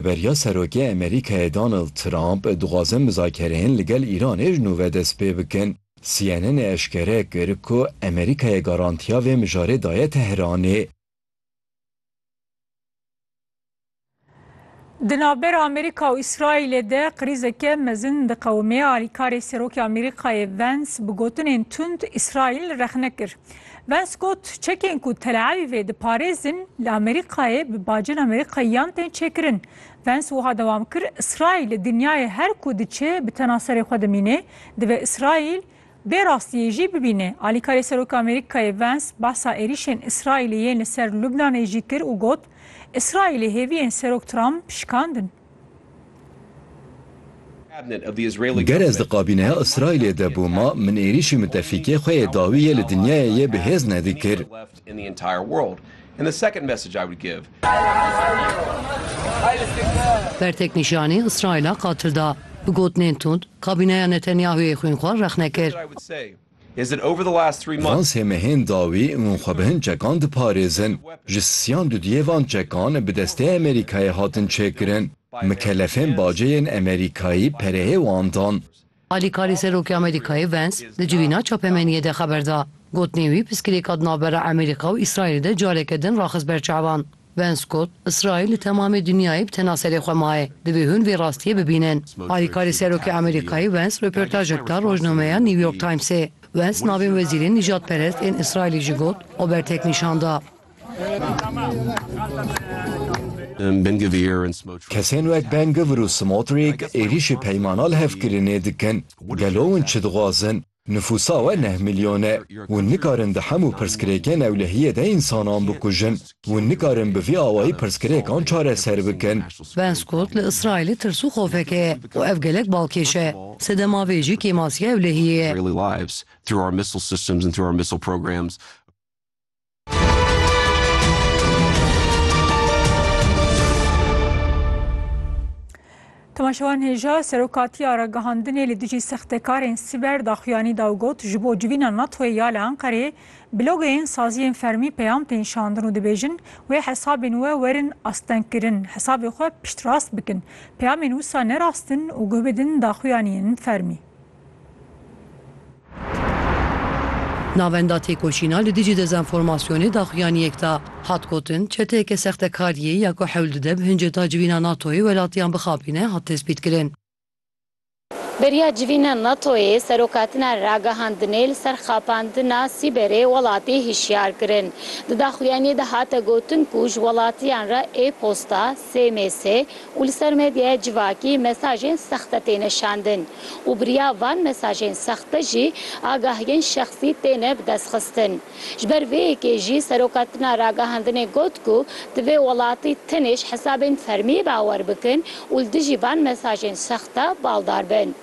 Beriya Serokê Amerîkayê Donald Trump dixwaze mizakereyên li gel Îranê ji nû ve dest pê bikin. CNN'ê eşkere kir ku Amerîkayê garantiya vê mijarê daye Tehranê. Di navbera Amerîka û Îsraîlê de krîzeke mezin diqewime. Alîkarê Serokê Amerîkayê Vance bi gotinên tund Îsraîl rexne kir. Vance got, Çekên ku Tel Avîvê diparêzin li Amerîkayê bi bacên Amerîkayiyan tên çêkirin. Vance wiha dewam kir, Îsraîl li dinyayê her ku diçe bi tena serê xwe dimîne, divê Îsraîl vê rastiyê jî bibîne. Alîkarê Seroka Amerîkayê Vance behsa êrîşên Îsraîlê yên li ser Lubnanê jî kir û got, Îsraîlê hêviyên Serok Trump şikandin. Ger ez di kabîneya Îsraîlê de bûma, min êrîşî mitefîkê xwe yê dawî yê li dinyayê yê bi hêz nedikir. Bertek nîşanî Îsraîla qatil da. Bi gotinên tund, kabîneya Netanyahûyê xwînxwar rexne kir. Van sê mehên dawî hûn xwe bi hin çekan diparêzin. Ji siyan dudiyê van çekan bi destê Amerîkayê hatin çêkirin. Mikelefên bacê yên Amerîkayî pereyê wan dan. Alîkarî Serokê Amerîkayê Vance di civîna çapemeniyê de xeber da. Gotinên wî piskilêka di navbera Amerîka û Îsraîlê de careke din raxist ber çavan. Vance got, Îsraîl li temamê dinyayê bi tena serê xwe maye, divê hûn vê rastiyê bibînin. Alîkarê Serokê Amerîkayê Vance röportajek da rojnameya New York Timesê. Vance navên wezîrên nîjadperest ên Îsraîlê jî got û bertek nîşan da. Kesên wek Ben Gvir û Smotrîk êrîşê peymana li hev kirinê dikin. Gelo hûn çi dixwazin? Nifûsa we neh milyon e. Hûn nikarin di hemû pirsgirêkên ewlehiyê de însanan bikujin. Hûn nikarin bi vî awayî pirsgirêkan çareser bikin. Ben Scott li Îsraîlê tirs û xofeke ye û ev gelek balkêş e. Sedema vê jî kêmasiya ewlehiyê ye. Tomaşewan Hêja serokatiya ragihandinê li dijî sextekarên sîber daxuyanî da û got ji bo civîna NATOyê ya li Enqereyê blogeyên saziyên fermî peyam tên şandin û dibêjin wê hesabên we werin astengkirin hesabê xwe piştrast bikin peyamên wisa ne rast in û guh bidin daxuyaniyên fermî. Navenda têkoşîna li dijî dezenformasyonê daxuyaniyek da. Hat gotin, çeteyeke sextekariyê ya ku hewl dide bi hinceta civîna NATO'yê welatiyan bixapîne hat tespîtkirin. Beriya civîna NATO'yê serokatina ragihandinê li ser xapandina sîberê welatî hişyar kirin. Di daxuyaniyê de hate gotin ku ji welatiyan re e-posta, SMS, û li ser medyaya civakî mesajên sexte têne şandin û bi riya van mesajên sexte jî agahiyên şexsî têne bidestxistin. Ji ber vê yekê jî Seroka Tina Ragihandinê got ku divê welatî tenê ji hesabên fermî bawer bikin û li dijî van mesajên sexte baldar bin.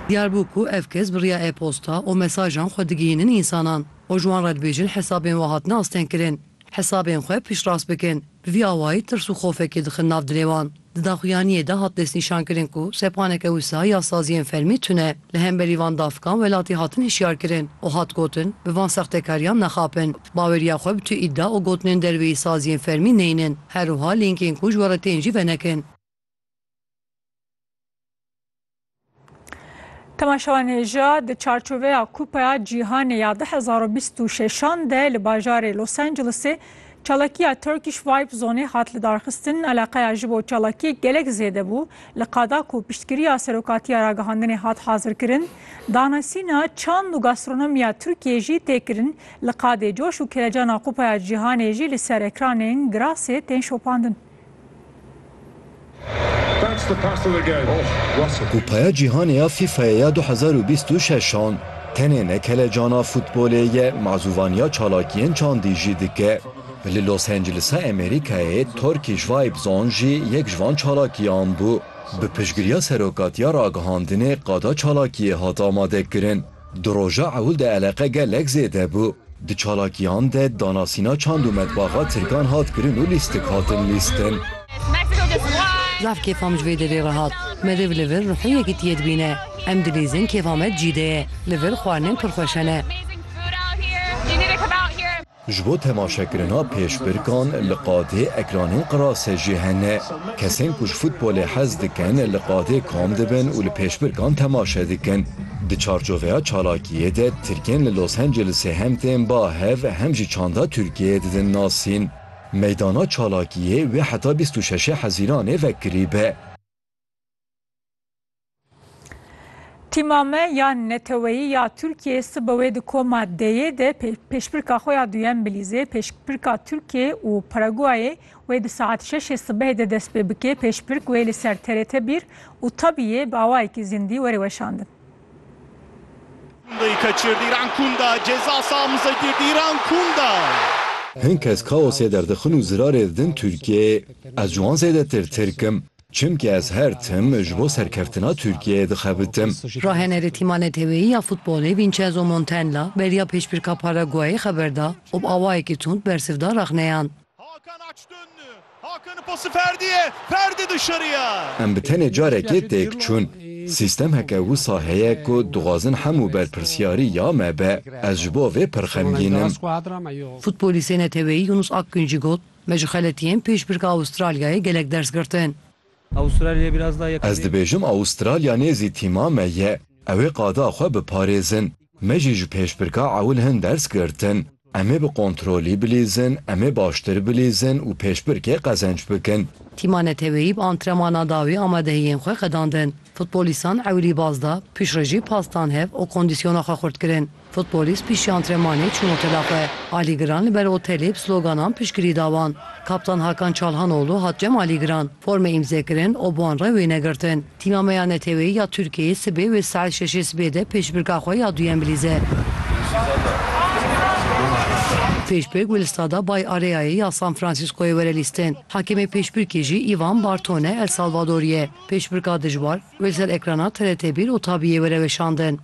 Diyar bû ku ev kes bi riya e-posta û mesajan xwe digihînin însanan û ji wan re dibêjin hesabên we hatine astengkirin. Hesabên xwe piştrast bikin. Bi vî awayî tirs û xofekê dixin nav dilê wan. Di daxuyaniyê de hat destnîşankirin ku sepaneke wisa ya saziyên fermî tune li hemberî van dafikan welatî hatin hişyarkirin û hat gotin bi van sextekariyan nexapin. Baweriya xwe bi tu îdia û gotinên derveyî saziyên fermî neynin. Herwiha lînkên ku ji we re tên jî venekin. Temaşevanêja di çarçoveya Kupaya Cîhanê ya 2026 de li bajarê Los Angelesê çalakiya Turkish Vibe Zoneê hat lidarxistin eleqeya ji bo çalakiyek gelek zêde bû li qada ku piştgiriya serokatiya ragihandinê hat hazirkirin danesîna çand û gastronomiya Tirkiyê jî tê kirin li qadê coş û kelecana Kupaya Cîhanê jî li ser ekranên girasê tên şopandin. Kupaya Cîhanê ya FIFA'yê ya du hezar û bîst û şeş an tenê ne kelecana futbolê ye, mazûvaniya çalakiyên çandî jî dike. Li Los Angelesa Amerîkayê Turkish Vibes an jî yek ji van çalakiyan bû. Bi piştgiriya Serokatiya Ragihandinê qada çalakiyê hat amadekirin. Di roja ewil de eleqe gelek zêde bû. Di çalakiyan de danasîna çand û metbaxa tirkan hat kirin û lîstik hatin lîstin. Zaf kêfa min ji vê derê re hat. Meriv li vir ruhê yekitiyê dibîne. Em dilîzin kêfa me di cî de ye. Li vir xwarinên pir xweş hene. Ji bo temaşekirina pêşbirkan li qadê ekranên qirase jî hene. Kesên ku ji futbolê hez dikin li qadê kom dibin û li pêşbirkan temaşe dikin. Di çarçoveya çalakiyê de tirkên li Los Angelesê hem tên ba hev hem jî çanda Tirkiyeyê didin nasîn. Meydana çalakiyê wê heta bîst û şeşê Hezîranê vekirîbe. Tîma me ya neteweyî ya Tirkiyeyê sibe wê di koma D'yê de pêşbirka xwe ya duyem Bilîzê, pêşbirka Tirkiyê û Paraguayê wê di saet şeşê sibehê de dest pê bike. Pêşbirk wê li ser TRT bir û tabiyê bi awayekî zindî were weşandin. Hin kes kaosê derdixin û zirarê didin Tirkiyeyê. Ez ji wan zêdetir Tirk im. Çimkî ez her tim ji bo serkeftina Tirkiyeyê dixebitim. Rahenerê tîma neteweyî ya futbolê Vincenzo Montella beriya pêşbirka Paraguayê xeber da û bi awayekî tund bersiv da rexneyan. Em bi tenê carekê têk çûn. Sîstem heke wisa heye ku dixwazin hemû berpirsyarî ya me be. Ez ji bo vê pir xemgîn im. Futbolîstê neteweyî Yunus Akgün jî got, Me ji xeletiyên pêşbirka Avustralyayê gelek ders girtin. Avustralya biraz daha yakın. Ez dibêjim Avustralya nêzî tîma me ye. Ew ê qada xwe biparêzin. Me jî ji pêşbirka ewil hin ders girtin. Em ê bi kontrolî bilîzin, em ê baştir bilîzin û pêşbirkê qezenc bikin. Tîma neteweyî bi antremanan dawî amadehiyên xwe qedandin. Futbolîstan ewilî baz da, piştre jî pastan hev û kondisyona xwe xurt kirin. Futbolîst piştî antrenmanê çûn otela xwe. Alî Giran li ber otelê bi sloganan piştgirî da wan. Kaptan Hakan Çalhanoğlu hat cem Alî Giran. Forme îmze kirin û bi wan re wêne girtin. Tîma me ya neteweyî ya Tirkiyeyê sibê wê saet şeşê sibê de pêşbirka xwe ya duyem bilîze. Pêşbirk wê li Stada Bay Areayê ya San Fransîskoyê were lîstin. Hakemê pêşbirkê jî Îvan Bartone El Salvadorî ye. Pêşbirka dijwar, Wê ser ekrana TRT bir û tabiyê were weşandin.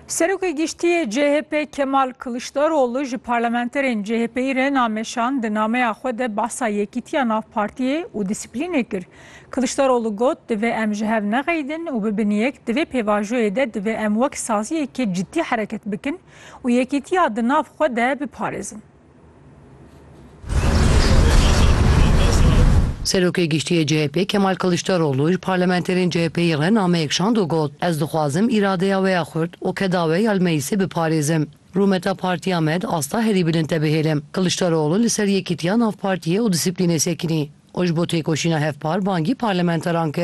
Serokê Giştî yê CHP Kemal Kiliçdaroglu ji parlamenterên CHP'yî re nameşan di nameya xwe de behsa yekîtiya nav partiyê û dîsiplînê kir. Kiliçdaroglu got, Divê em ji hev nexeyidin û bibin yek, di vê pêvajoyê de divê em wek saziyekê cidî hereket bikin û yekîtiya di nav xwe de biparêzin. Serokê Giştî yê CHP'ê Kemal Kiliçdaroglu ji parlamenterên CHP'yê re nameyek şand û got, Ez dixwazim îradeya wê ya xurt û keda wê ya li meclîsê biparêzim. Rûmeta partiya me di asta herî bilind de bihêle. Kiliçdaroglu li ser yekîtiya nav partiyê û dîsîplînê sekinî û ji bo têkoşîna hevpar bangî parlamenteran kir.